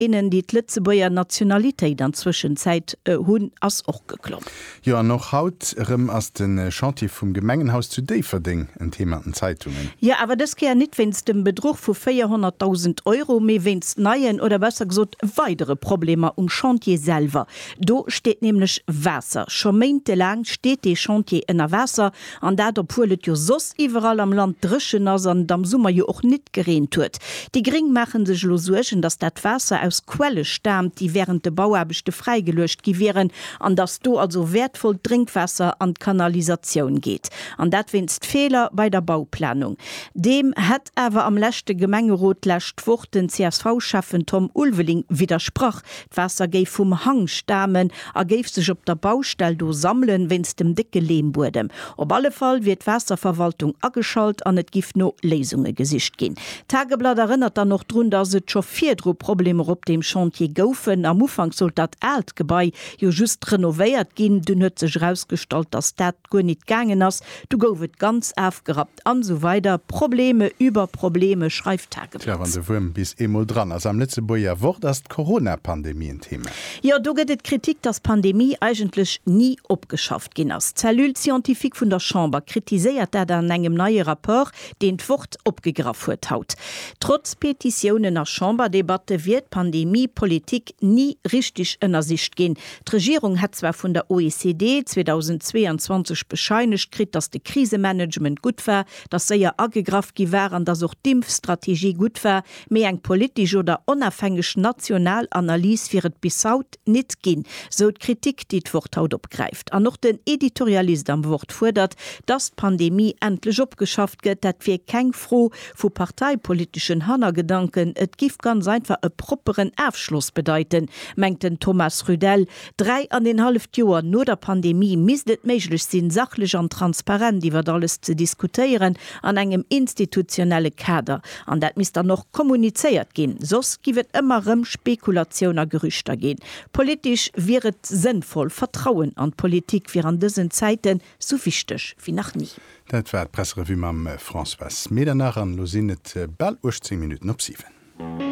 innen, déi d'Lëtzebuerger Nationalitéit an Zwëschenzäit hunn, ass och geklomm. Jo, an och haut erëm ass de Chantier vum Gemengenhaus zu Déifferdeng en Thema an den Zeitungen. Jo, awer dës Kéier nit wéinst dem Bedruch vu 400.000 Euro, mee wéinst neien, oder besser gesot weidere Problemer um Chantier selwer. Do steet nämlech Waasser. Scho méintelaang steet dee Chantier ënner Waasser. An dat obwuel et jo soss iwwerall am Land dréchen ass an et am Summer jo och nit gereent huet. Déi gréng maachen sech elo Suergen, datt dat Waasser aus Quelle staamt, déi wärend de Bauaarbechte fräigeluecht gi wieren an datt do also wäertvollt Drénkwaasser an d'Kanalisatioun geet. An dat wéinst Feeler bei der Bauplanung. Deem hätt awer am leschte Gemengerot d'lescht Woch den CSV-Schäffen Tom Ulveling widdersprach. D'Waasser géif vum Hang stamen a géif sech op der Baustell do sammelen, wéinst dem décke Leembuedem. Op alle Fall wier d'Waasserverwaltung ageschalt an et giff no Léisunge gesicht ginn. D'Tageblatt erënnert dann och drun, datt et scho virdru Problemer op deem Chantier goufen. Am Ufank sollt dat aalt Gebai jo just renovéiert ginn. Dunn huet sech erausgestallt, datt dat guer nit gaangen ass. Du gouf et ganz afgerappt. An esou weider Probleme über Probleme schreift Tageblatt. Tja, wann de Wuerm bis eemol dran ass am Lëtzebuerger Wort, ass d'Corona-Pandemie en Thema. Jo, do gëtt et Kritik, dass d'Pandemie eigentlech ni opgeschafft ginn ass. D'Cellule scientifique vun der Chamber kritiséiert dat an engem neie Rapport, deen d'Wort opgegraff huet haut. Trotz Petitiounen a Chamberdebatte wier d'Pandemiepolitik ni richteg ënnersicht ginn. D'Regierung hätt zwar vun der OECD 2022 bescheinegt kritt, datt de Krisemanagement gutt war, datt séier agegraff gi war an datt och d'Impfstrategie gutt war, mee eng politesch oder onafhängeg national Analys wier et bis haut nit ginn, sou d'Kritik, déi d'Wort haut opgräift. An och den Editorialist am Wort fuerdert, datt d'Pandemie endlech opgeschafft gëtt. Dat wier keng Fro vu parteipoliteschen Hannergedanken, et giff ganz einfach e propperen Afschloss bedeiten, mengt den Thomas Rüdell. Dräi an een halleft Joer no der Pandemie misst et méiglech sinn, sachlech an transparent iwwert alles ze diskutéieren an engem institutionelle Kader. An dat misst dann och kommunizéiert ginn, soss giff et ëmmer rëm Spekulatioun a Gerüchter ginn. Politesch wier et sënnvoll, Vertrauen an d'Politik wier an dësen Zäiten Sou wichteg wéi nach ni. Dat war d'Presserevue mam Françoise Medernach an elo sinn et bal 18 Minutten op 7.